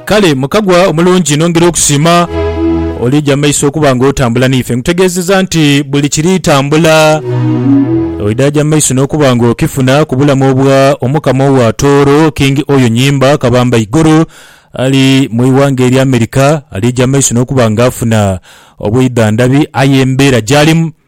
Kale mukagwa omulungi nongera okusiima olija mu maiso okuba nga otambula naife. Nkutegeezeza nti buli kiri tambula oidha aja mu maiso n'okuba nga okifuna ku bulamu obwa Omukama owa Tooro, King Oyo Nyimba Kabamba Iguru ali mu ighanga erya America. Alija mu maiso n'okuba nga afuna obwidhandhabi aye embeera gy'alimu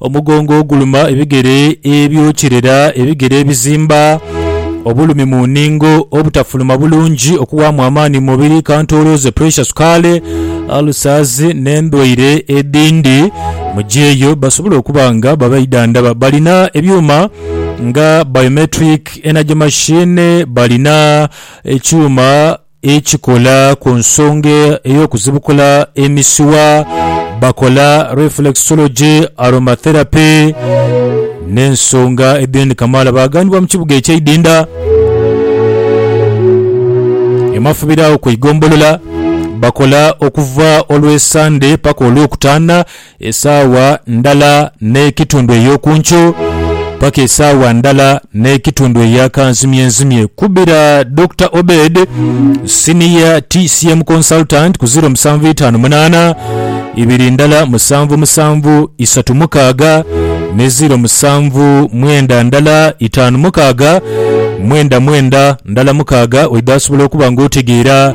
Omugongo oguluma, ebigere ebyokirera, ebigere ebizimba, obulumi mu nningo, obutafuluma bulungi, okuwaamu amaani mu mubiri, kantoolooze, puresha, sukaali, alusaazi n'endwaire edhindi. Mu gyeeyo basobola okuba nga babaidhandhaba. Balina ebyuma nga biometric energy machine, balina ekyuma ekikola ku nsonga ey'okuzibukula emisuwa, bakola reflexology, aromatherapy n'ensonga edhindi kamaala. Baaganibwa mu kibuga eky'e Idinda e Mafubira awo ku igombolola. Bakola okuva Olwesande paka Olwokutaana. Esaawa ndala n'ekitundu ey'oku nkyo paka esaawa ndala n'ekitundu eya kanzimyenzimye. Kubira Dokita Obed, Senior TCM Consultant ku ziro musanvu itaanu munaana, ibiri ndala musanvu musanvu isatu mukaaga ne ziro musanvu mwenda ndala itaanu mukaaga mwenda mwenda ndala mukaaga oidha asobola okuba nga otegeera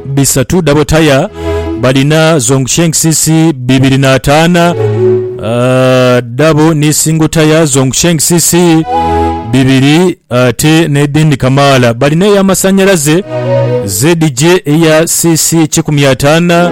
bisatu dabo taya balina zongshengcc bibiri n'ataana ah, dabo ni singo taya zongshengcc bibiri ate n'edhindi kamaala balina ey'amasannyalaze ZJ eya cc kikumi ataana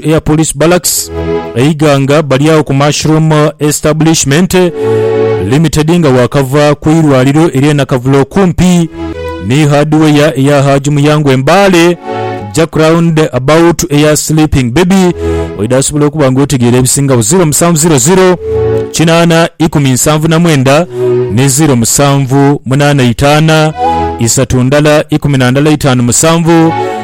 to Air Police Barracks e Iganga bali agho ku Mushroom Establishment Limited nga waakava ku irwaliro ery'e Nakavule okumpi ni hardware eya Haji Muyango e Mbale. Jack round about to Air Sleeping Baby oidha asobola okuba nga otegeera ebisingagho 0700 kinaana ikumi nsanvu na mwenda ni 07 munaana itaana isatu ndala ikumi na ndala itaanu musanvu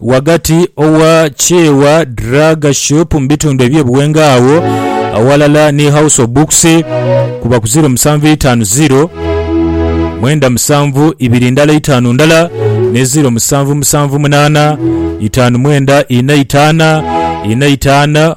ghagati owa Kyewa Drug Shop mu bitundu eby'e Buwenga agho aghalala ni House of Books kuba ku ziro musanvu itaanu ziro mwenda musanvu ibiri ndala itaanu ndala ne ziro musanvu musanvu munaana itaanu mwenda ina itaana ina itaana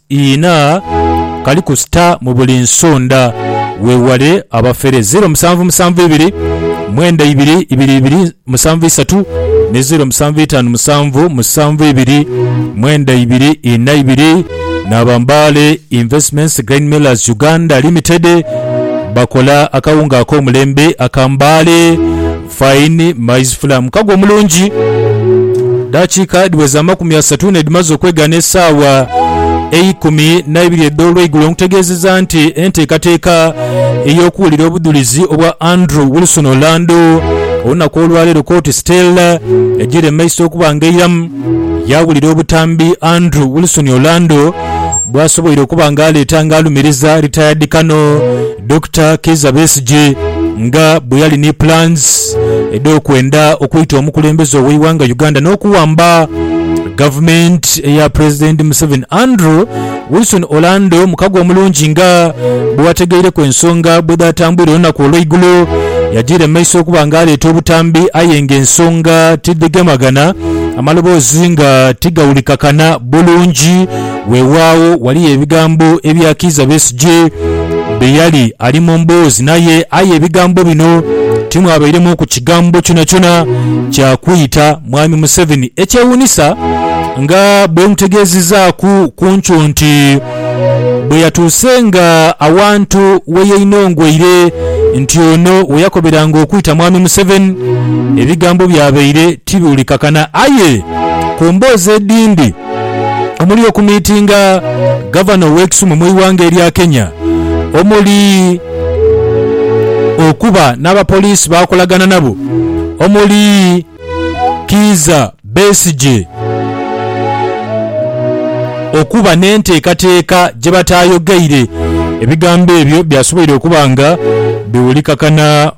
Iina kali ku star mu buli nsonda. Weewale abafere. Zeero musanvu musanvu ibiri mwenda ibiri ibiri ibiri musanvu isatu ni zeero musanvu itaanu musanvu musanvu ibiri mwenda ibiri ina ibiri. N'aba Mbale Investments Grain Millers Uganda Limited bakola akawunga ak'omulembe aka Mbale. Fine maize fula mukago omulungi. Dakiika dhiweza amakumi asatu nedhimaze okwegaana esaawa eikumi naibiri edh'olweigulo nkutegeezeza nti enteekateeka ey'okuwulira obudhulizi obwa Andrew Wilson Orlando olunaku olwaleero kooti Stella egyiire mumaiso okuba nga eiramu yawulira obutambi Andrew Wilson Orlando bwasoboire okuba nga aleeta nga alumiriza retired Colonel Dokita Kizza Besigye nga bweyali ni plans edhokwenda okwita omukulembeze oweighanga Uganda nokuwamba government eya president Museveni Andrew Wilson Orlando mukago omulungi nga bwewategeireku ensonga bwedhatambwire olunaku olweigulo yajiira mumaiso okuba nga aleeta obutambi aye nga ensonga tidhigemagana amaloboozi nga tigawulikakana bulungi Weewaawo, ghaligho ebigambo ebyakiiza Besigye bye yali ali mu mboozi naye, aye ebigambo bino timwabairemu ku kigambo kyonakyona kya kwita Mwami Museveni. Ekyewuunisa nga bwemutegeezezaaku ku nkyo nti bwe yatuusenga awantu we yainongweire nti ono we yakoberanga okwita Mwami Museveni, ebigambo byabaire tibiwulikakana aye ku mboozi edhindi, omuli okumiitinga Gavana ow'e Kisumu mu ighanga erya Kenya omuli okuba n'abapoliisi b'akolagana nabo omuli Kiiza Besigye okuba n'enteekateeka gye bataayogeire. Ebigambo ebyo byasoboire okuba nga biwulikakana.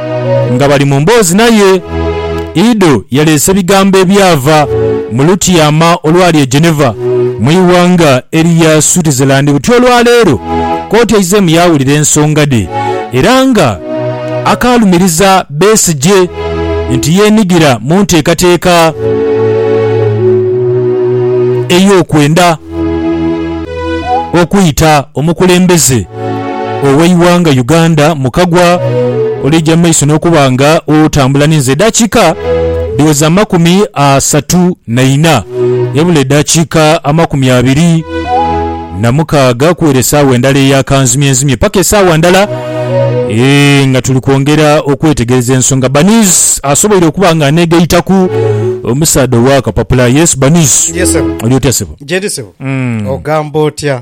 Nga bali mu mboozi naye, Ido yaleese ebigambo ebyava mu lutyama olwali e Geneva, mu ighanga erya Switzerland. Buti olwa leero, kooti eizeemu yaawulira ensonga dhe era nga akaalumiriza Besigye nti yeenigira mu nteekateeka ey'okwenda okwita omukulembeze. ow'eighanga Uganda Mukagwa olieja mu maiso n'okuba nga otambula ninze edaakiika dhiweza amakumi asatu na ina ebula edaakiika amakumi abiri na mukaaga kuwera esaawa endala eya kanzimyenzimye paka esaawa ndala eeh nga tuli kwongera okwetegereza ensonga Baniz asoboire okuba nga aneegaitaku omusaadha ow'akapapula yes Baniz Ye ssebo. oli otya ssebo? Gyendi ssebo. Ogamba otya?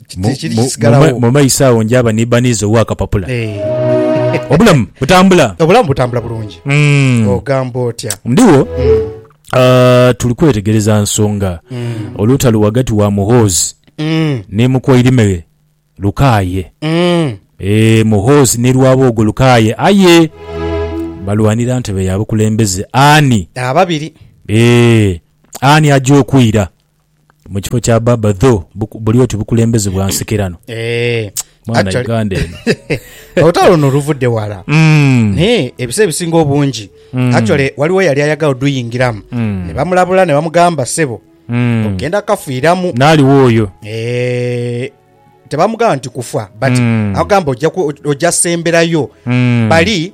Mu- Tekiri mu- kisigalawo. mu- mu maiso awo njaba nibaniiza ow'akapapula Eh, obulamu butambula obulamu butambula bulungi Mm. ogamba otya ndiwo ah, tuli kwetegereza nsonga olutalo wagati wa muhoozi Mm, ne mukwairime lukaaye mm. Eh, muhoozi ne lwaboogo lukaaye aye balwanira ntebe ya bukulembeze ani ababiri Eh, ani aja okwira mu kifo kya baaba though buku- buli oti bukulembeze bwa nsekerano Eh, mwana actually- uganda eno olutalo luno luvudde wala Mm. naye ebisa ebisinga obungi actually waliwo yali ayagala oduyingiramu ne bamulabula ne bamugamba sebo Mm. ogenda kafiiramu naaliwo oyo Eh, tebamugamba nti kufa but Mm. agamba ojja ku- ojja semberayo Mm. bali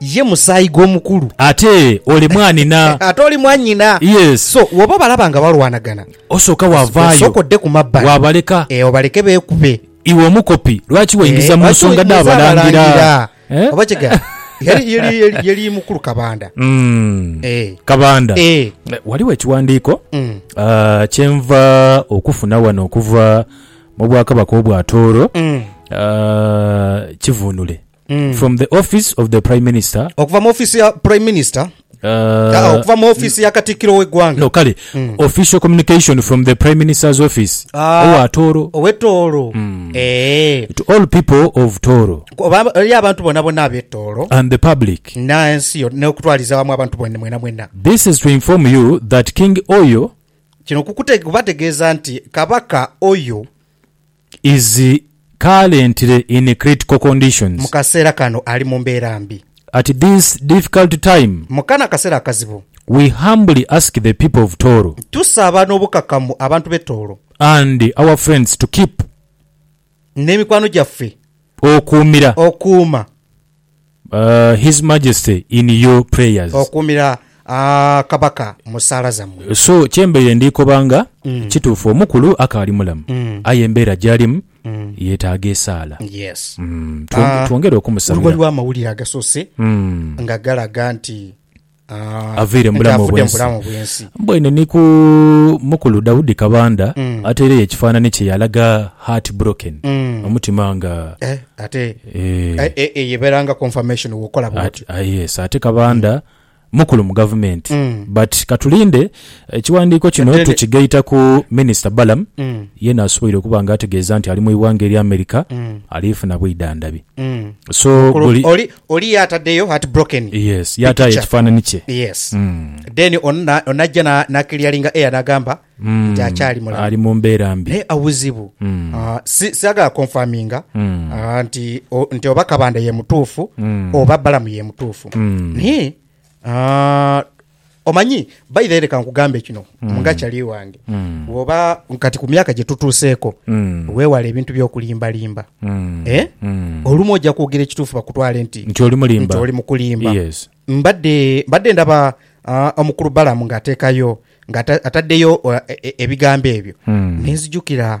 Ye musaayi gw'omukulu. Ate oli mwanhina. Ate oli mwanhina. Yes. So, wooba obalaba nga balwanagana. Osooka waavaayo. Osooka odde ku mabbali. Waabaleka. Ee, obaleke beekube. Iwe omukopi, lwaki weingiza mu nsonga dha balangira? Oba kigambibwa, yali mukulu Kabanda. Ee. Kabanda. Ee. Ghaligho ekiwandiiko kye nva okufuna wano okuva mu Bwakabaka obwa Tooro, kivunule. From the office of the Prime Minister. Okuva mu offiisi ya Prime Minister. Uh, Okuva mu offiisi ya Katikkiro w'eggwanga. No, kale. Mm. Official communication from the Prime Minister's office. Ah, Owa Tooro. Owe Tooro. Mm. Eh. To all people of Tooro. Eri abantu bona bona abe Tooro. And the public. Na ensi yo, n'okutwaliza wamu abantu bona mwena mwena. This is to inform you that King Oyo. Kino kubategeeza nti Kabaka Oyo. is currently in critical conditions. Mukaseera kano ali mu mbeera mbi. At this difficult time. Mu kano akaseera akazibu. We humbly ask the people of Tooro. Tusaba n'obukakamu abantu b'e Tooro. And our friends to keep. N'emikwano gyaffe. Okuumira. Okuuma. His Majesty in your prayers. Okuumira Kabaka mu saala zammwe. So kye mbaire ndi koba nga kituufu omukulu akaali mulamu aye embeera gy'alimu yeetaaga esaala. Yes. Twongere okumusabira. Waliwo amawulire agasoose nga galaga nti. avaire mu bulamu obw'ensi. Mbwaine ni ku mukulu Daudi Kabanda ataireyo ekifaanani kye yaalaga heart broken, omutima nga. Yes, ate Kabanda mukulu mu gavumenti. But katulinde ekiwandiiko kino tukigaita ku Minisita Balaam yeena asoboire okuba nga ategeeza nti ali mu ighanga erya America ali funa bwidhandhabi. So buli. Oli yaatadeyo heartbroken Yes, yaataayo picture. ekifaananhi kye. Yes. Then ono na- ono najja na- na clearinga air n'agamba nti akyali mulamu. Ali mu mbeera mbi. naye awuzibu Ah, si- sagala konfaminga ah, nti o- nti oba kabanda ye mutuufu oba balamu ye mutuufu naye ah, Omanyi, baidha leka nkugambe kino mm. nga kyali wange mm. woba kati ku myaka gyetutuuseeko mm. wewala ebintu byokulimbalimba mm. eh? mm. olumu ojja kwogera ekituufu bakutwale nti nti oli mukulimba yes. mbadde mbadde ndaba uh, omukulu balamu ng'ateekayo ng'ataddeyo uh, e, e, ebigambo ebyo mm. nenzijukira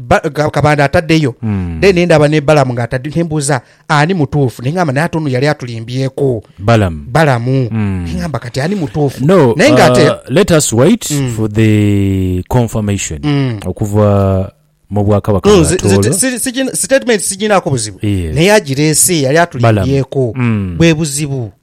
ba- ka- kabanda ataddeyo then ne ndaba ne balamu nga atadde ne mbuuza ani mutuufu ne ngamba naye ate ono yali atulimbyeeko Balaam. balamu Mm. ne ngamba kati ani mutuufu No, naye nga ate uh, let us wait for the confirmation Mm. okuva mu bwakabaka No, bwa nze- nze- Tooro. si- si- sitatimenti siginaako buzibu Yes. naye agireese yali Balamu. atulimbyeeko Mm. bwe buzibu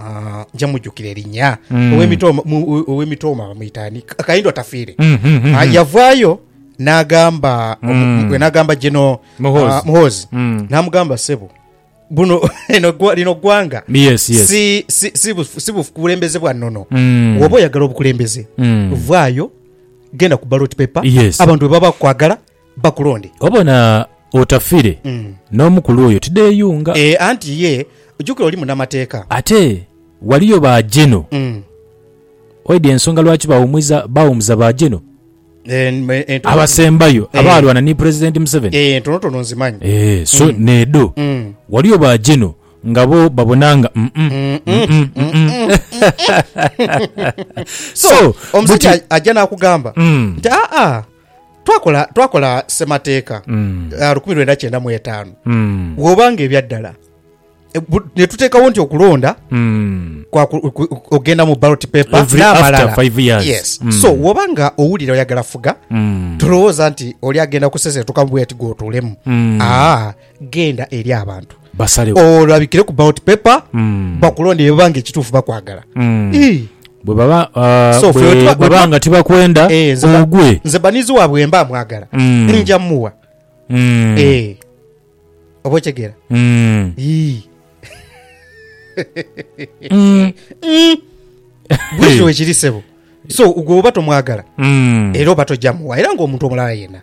Ah, nja mujukira erinya Mm. Ow'emitooma- mu- ow'emitooma bamwita ani Ka- kayindo atafiire Mm, mm, mm, Ah, mm. yavaayo n'agamba Mm. omu- n'agamba gino Muhoozi. ah, muhoozi Mm. n'amugamba sebo buno eno gwa- lino ggwanga Yes, yes. si- si- si bu- si bukulembeze bwa nnono Mm. woba oyagala obukulembeze Mm. vaayo genda ku ballot paper Yes. abantu bwe baba bakwagala bakulonde. Obona otafire n'omukulu oyo tideyunga. E, anti ye, jukira oli munamateeka. Ate waliyo ba Geno. Mm. Waidha ensonga lwaki bawumuiza, bawumuza ba Geno E, n- e, ntono- abasembayo Eh. abaalwana ni President Museveni. E, ntonotono nzimanyi. Eh, so needho Mm. waliyo ba Geno nga bo babona nga mm, mm, mm, mm, mm, mm. So, omusajja buti- ajja n'akugamba Mm. nti aa Twakola, twakola Ssemateeka Mm. ah, lukumi lwenda kyenda mu etaanu Mm. bwoba nga ebya ddala e, bu- ne tuteekawo nti okulonda Mm. kwa ku- ku- okugenda mu ballot paper Every n'amalala. after five years. Yes. Mm. so woba nga owulira oyagala fuga Mm. tolowooza nti oli agenda kuseseetuka mu bweti gwotuulemu Mm. Ah, Genda eri abantu olabikire ku ballot paper bakulonde bye babanga ekituufu bakwagala. Ii. Bwe baba So, ffe bwe bwetuba- baba bwetuba- nga tibakwenda Eh, nze ba- ogwe. nze banizi waabwe bwe mba mwagala Mm. nja muwa Mm. Eh. oba okitegera Mm. Ii. Mm. bwekyo wekiri sebo so gwe oba tomwagala Mm. era oba tojja muwa era ngaomuntu omulala yenna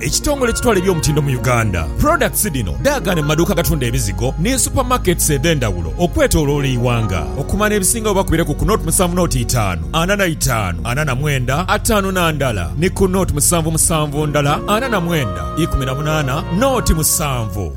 Ekitongole ekitwala eby'omutindo mu Uganda, products dhino dhaagaana mu maduuka agatunda ebizigo ni super markets edhendhawulo okwetoloola eighanga. Okumanya ebisingawo oba kubireku ku nought musanvu nought itaanu ana na itaanu ana na mwenda ataanu na ndala ni ku nought musanvu musanvu ndala ana na mwenda ikumi na munaana nought musanvu.